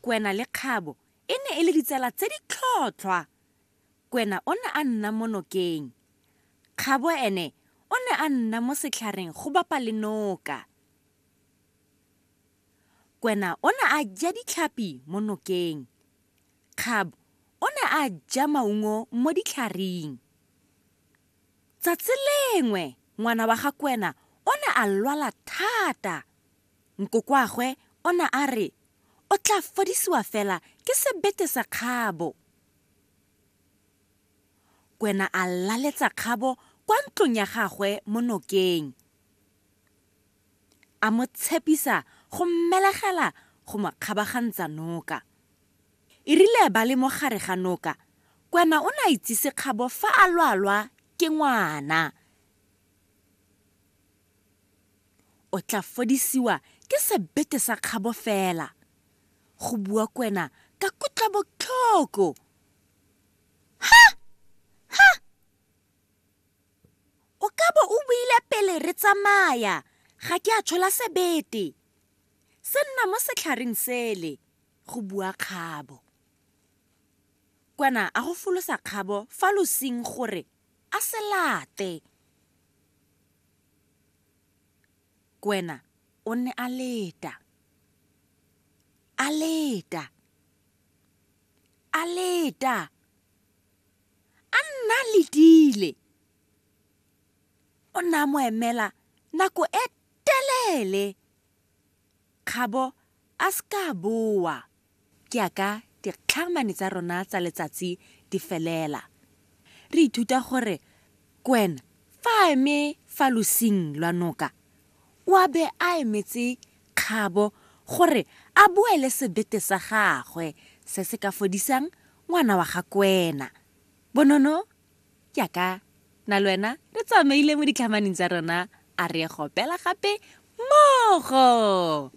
Kwena le Kgabo e ne e le ditsala tse di tlhotlhwa. Kwena o ne a nna mo nokeng. Kgabo ene o ne a nna mo setlhareng go bapa le noka. Kwena o ne a ja ditlhapi mo nokeng. Kgabo o ne a ja maungo mo ditlharing. Tsatsi lengwe ngwana wa ga Kwena o ne a lwala thata. Nkokoagwe o ne a re o tla fodisiwa fela ke sebete sa kgabo. Kwena a laletsa kgabo kwa ntlong ya gagwe mo nokeng, a mo tshepisa go mmelegela go mo kgabagantsa noka. E rile ba le mo gare ga noka, Kwena o ne a itsise kgabo fa a lwalwa ke ngwana. O tla fodisiwa ke sebete sa kgabo fela, go bua Kwena ka kutlobotlhoko. Ha! Ha! O ka bo o buile pele re tsamaya, ga ke a tshola sebete se nna mo setlhareng sele, go bua kgabo. Kwena a go folosa kgabo fa losing gore a se late. Kwena o ne a leta, a leta, a leta, a nna a letile. O ne a mo emela nako e telele. Kgabo a se ka a boa ke a ka dikgakgamane tsa rona tsa letsatsi di felela. Re ithuta gore Gwen fa a eme fa losing lwa noka, o a be a emetse Kgabo gore a boele sebete sa gagwe se se ka fodisang ngwana wa ga Kwena. Bonono Jaaka na lwena re tsamaile mo ditlhamaneng tsa rona a re gopela gape mmogo.